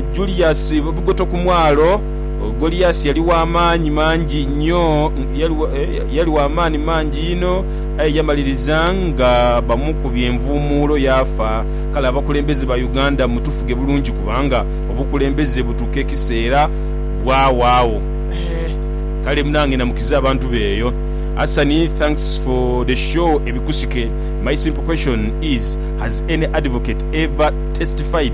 Julius Bugoto ku mwalo. Goliasi yali wa maani mangi inho, yali wa maani mangi inho, aye yamaliriza nga bamukubye envuumuulo yaafa. Kale abakulembeze ba Uganda mutufuge bulungi kubanga obukulembeze butuuka ekiseera bwawaagho. Kale munange namukiza abantu be eyo. Asani thanks for the show ebikusike my simple question is has any advocate ever testified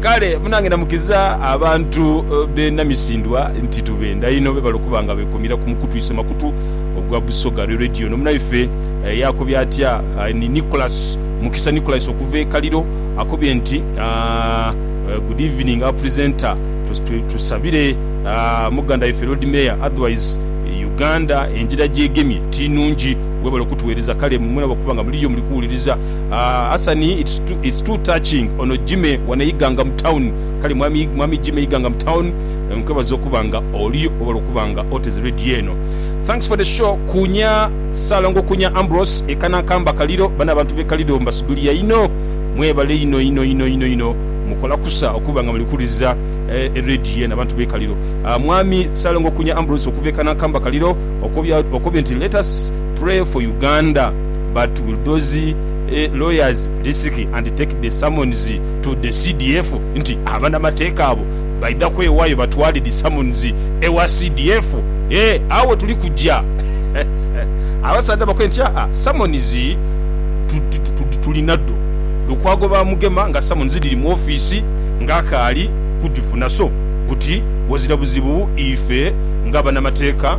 Kale munange namukiza abantu b'e Namisindwa nti tubenda inho bebale okuba nga bekomira ku mukutu ise makutu ogwa Busoga Re Radio. Ono munaife yakobye atya? Ni Nicholas Mukisa Nicholas okuva e Kaliro akobye nti, Good evening our presenter, tusabire muganda waife Lord Mayor otherwise Uganda engira gyegemye tinungi, webale okutuwereza kale mwenabo okuba nga muliyo muli kuwuliriza. Aah Asani it's too it's too touching ono Jimmy wano Iganga mu town kale mwami mwami Jimmy Iganga mu town nkwebaza okuba nga oliyo webale okuba nga oteze radio eno thanks for the show kunya Salongo kunya Ambrose eka na kamba kaliro bano abantu be kaliro mbasubiria inho mwebale inho inho inho inho inho mukola kusa okuba nga muli kuwuliriza e radio eno abantu be kaliro aah mwami Salongo kunya Ambrose okuva eka na kamba kaliro okobya okobye nti let us pray for Uganda. but will those lawyers risk and take the summons to the CDF nti abanamateeka abo baidha kwewayo batwale the summons ewa CDF eeh agho wetuli kuja abasaadha bakoye nti aa summons tulinadho Lukwago bamugema nga summons dhiri mu office nga akaali kudhifuna so buti wazira buzibu ife nga banamateeka